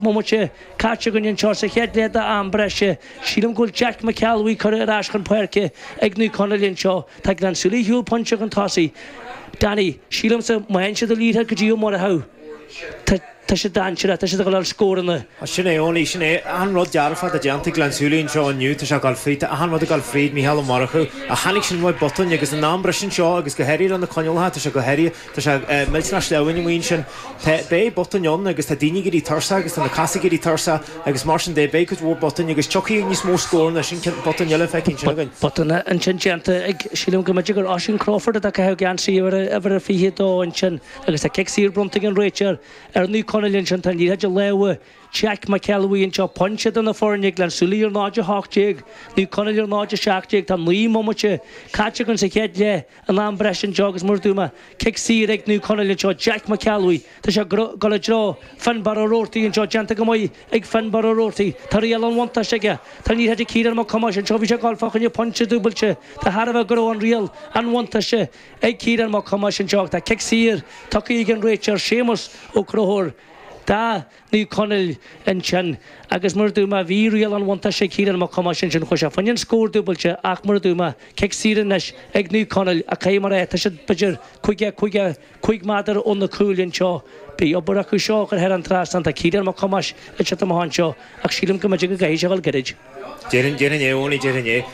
mbomaite caite againn anseo sa chéad leath d'am breise. Sílim go bhfuil Jeaic Mac Ceallbhuí curtha ar ais chun páirce ag Naomh Conaill anseo. Tá Gleann tSúilí shiúl pointe chun tosaigh. Danny, sílimse, má fhaigheann siad an liathróid go dtí Ó Murchú, tá tá siad dainséarach, tá siad ag fáil scóranna. Sin é, Eoin, sin é. Achan rud dearfach atá déanta ag Gleann tSúilí anseo inniu, tá sé ag gabháil fríd, tá achan rud ag gabháil fríd Mhícheál Ó Murchú. Ach tháinig sin uaidh botúin agus in am breise anseo agus go háirithe le na coinníollacha, tá sé go háirithe, Tá sé millteanach sleamhain amuigh ansin. Tá, beidh botúin ann agus tá daoine ag éirí tuirseach agus tá na cosa ag éirí tuirseach agus mar sin de beidh cuid mhór botúin agus tiocfaidh níos mó scóranna, sin ceann, botún eile feicthe ansin againn. Botún ansin déanta ag, sílim go mb'fhéidir gur Oisín Crawford atá ag caitheamh geansaí uimhir a 22 ansin agus tá cic saor bronnta ag an réiteoir ar Naomh Conaill ansin, tá an liathróid i lámha Jeaic Mac Ceallbhuí anseo, pointe idir na foirne, Gleann tSúilí ar 0:18, Naomh Conaill ar 0:17. Tá naoi mbomaite caite againn sa chéad leath. In am breise anseo agus mar a dúirt mé, cic saor ag Naomh Conaill anseo, Jack Mac Ceallbhuí, tá sé ag dul i dtreo Finnbarr Ó Robhartaigh anseo, déanta go maith ag Finnbarr Ó Robhartaigh, tá riail an bhuntáiste aige, tá an liathróid ag Ciarán Mac Thomáis anseo, bhí sé ag dul fá choinne pointe dúbailte de thairbhe go raibh an riail an bhuntáiste ag Ciarán Mac Thomáis anseo ach tá cic saor tugtha ag an réiteoir Séamus Ó Conchúir do Naomh Conaill ansin, agus mar a dúirt mé, bhí riail an bhuntáiste ag Ciarán Mac Thomáis ansin, chuaigh sé fá choinne an scór dúbailte, ach mar a dúirt mé, cic saor anois ag Naomh Conaill, ach caithfidh mé a rá, tá sé b'fhéidir caoga, caoga cúig méadar ó na cúil anseo, beidh obair acu seo a chur thar an trasnán, tá Ciarán Mac Thomáis ag titim amach anseo, ach sílim go mb'fhéidir go gcaithfidh sé a dhul gairid. Déarfainn, déarfainn é, Eoiní déarfainn é.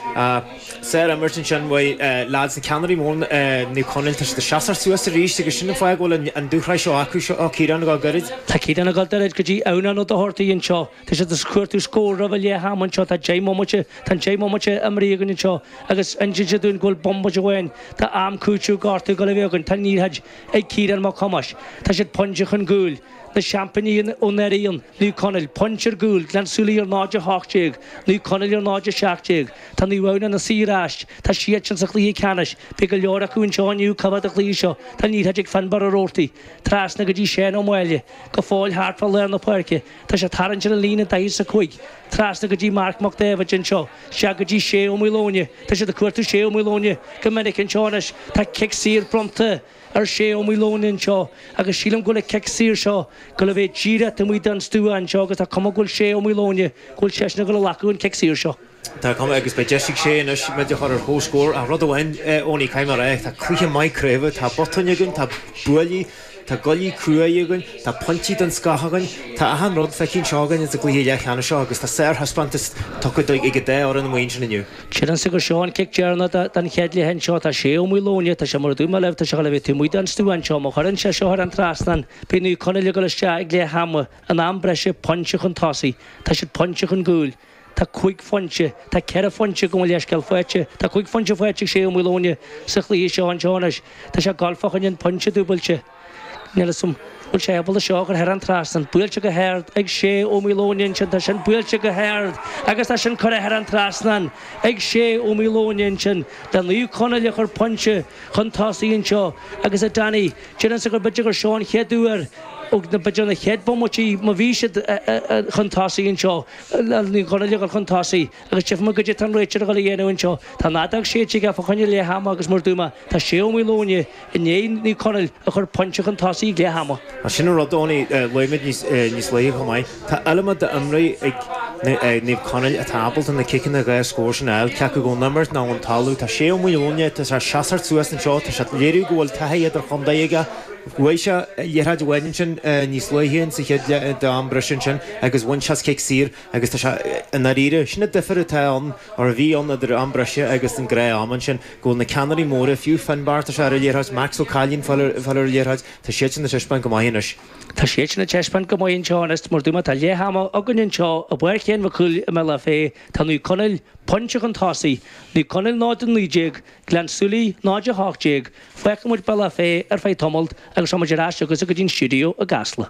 Sárimirt ansin, bhuel, leaids, na ceannairí móra, Naomh Conaill, tá siad ag seasamh suas arís agus sin an fáth go bhfuil an dúshraith seo acu, seo Ciarán ag dul gairid. Tá Ciarán ag dul gairid go dtí Adhamhnán Ó Dochartaigh anseo. Tá siad ag cuartú scór roimh a leath ama anseo, tá deich mbomaite, tá an deich mbomaite imrithe againn anseo agus insíonn siad dúinn go bhfuil bomaite amháin d'am cúitimh gortaithe ag dul a bheith againn, tá an liathróid ag Ciarán Mac Thomáis, tá siad pointe chun cúil. Na seaimpíní ó anuraidh, Naomh Conaill, Pointe ar gcúl, Gleann tSúilí ar 0, 18, Naomh Conaill ar 0, 17. Tá Naomh Adhamhnáin na Saor aist. Tá siad sin sa chluiche ceannais. Beidh go leor acu anseo inniu ag coimhéad an chluiche seo. Tá an liathróid ag Finnbarr Ó Robhartaigh. Trasna go dtí Seán Ó Máille. Go fóill thart fá lár na páirce. Tá sé ag tarraingt ar an líne daichead 's a cúig. Trasna go dtí Marc Mac Daibhéid anseo. Isteach go dtí Shay Ó Maoileoin. Tá siad ag cuartú Shay Ó Maoileoin go minic anseo anois. Tá cic saor bronnta. ar Shay Ó Maoileoin anseo agus sílim go bhfuil an cic saor seo ag dul a bheith díreach taobh amuigh den stua anseo agus tá cuma go bhfuil Shay Ó Maoileoin go bhfuil seisean ag dul a ghlacadh an cic saor seo. Tá cuma agus beidh deis ag Shay anois muid a chur ar chomhscór ach rud amháin Eoiní caithfidh mé a rá tá cluiche maith craoibhe, tá botúin againn, tá buillí, tá guaillí cruaidh againn, tá pointí den scoth againn, tá achan rud feicthe anseo againn ins an gcluiche leathcheannais seo agus tá sárthaispeántas tugtha ag an dá fhoireann amuigh ansin inniu. Déarfainnse gur seo an cic deireanach den chéad leath anseo. Tá Sé Ó Maoileoin. Tá sé mar a dúirt mé libh, tá sé chóir a bheith taobh amuigh den stua anseo. Má chuireann sé seo thar an trasnán, beidh Naomh Conaill ag dul isteach ag leath ama, in am breise, pointe chun tosaigh. Tá siad pointe chun gcúil. Tá cúig phointe, tá ceithre phointe gabh mo leithscéal faighte. Tá cúig phointe faighte ag Sé Ó Maoileoin sa chluiche seo anseo anois. Tá sé ag dul fá choinne an pointe dúbailte. Níl 'fhios a'm an bhfuil sé ábalta é seo a chur thar an trasnán. Buailte go hard ag Sé Ó Maoileoin ansin, tá sin buailte go hard agus tá sin curtha thar an trasnán ag Sé Ó Maoileoin ansin le Naomh Conaill a chur pointe chun tosaigh anseo agus a Danny, déarfainnse gur b'fhéidir gur seo an chéad uair ó b'fhéidir na chéad bhomaití má bhí siad chun tosaigh anseo, Naomh Conaill a chur chun tosaigh. Agus tífidh muid caidé atá an réiteoir ag dul a dhéanamh anseo. Tá an fheadóg séidte aige fá choinne leath ama agus mar a dúirt mé, tá Sé Ó Maoileoin i ndiaidh Naomh Conaill a chur pointe chun tosaigh ag leath ama. Ach sin an rud, Tony, luaigh muid níos luaithe chomh maith. Tá iliomad d'imreoirí ag Naomh Conaill atá ábalta na ciceanna dhá scór sin a fháil, cé acu ón imirt nó ón talamh. Tá Sé Ó Maoileoin, tá sé ag seasamh suas anseo, tá sé ag léiriú go bhfuil taithí idir-chontae aige. Bhuaigh sé liathróid amháin ansin níos luaithe sa chéad leath den am breise ansin, agus bhain sé as cic saor. Agus tá sé, i ndáiríre. Sin an difear atá ann, or a bhí ann, idir am breise agus an gnáth-am ansin, go bhfuil na ceannairí móra, fiú Finbar, tá sé ar an liathróid, Max Ó Cailín, ag fáil ar an liathróid, tá siadsan ag taispeáint go maith anois. Tá siadsan ag taispeáint go maith anseo anois mar a dúirt mé tá leath ama againn anseo i bPáirc Sheáin Mhic Cumhaill i mBealach Féich, tá Naomh Conaill pointe chun tosaigh, Naomh Conaill 0-19, Gleann Súilí 0-18, fágfaidh muid Bealach Féich ar feadh tamalt agus tá muid ar ais chugaibhse go dtí'n stiúideo i gCasla.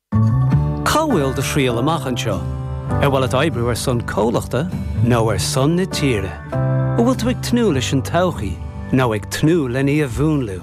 Cá bhfuil do thriall amach anseo? Ar mhaith leat oibriú ar son comhlachta nó ar son na tíre? An bhfuil tú ag tnúth leis an todhchaí nó ag tnúth len í a mhúnlú?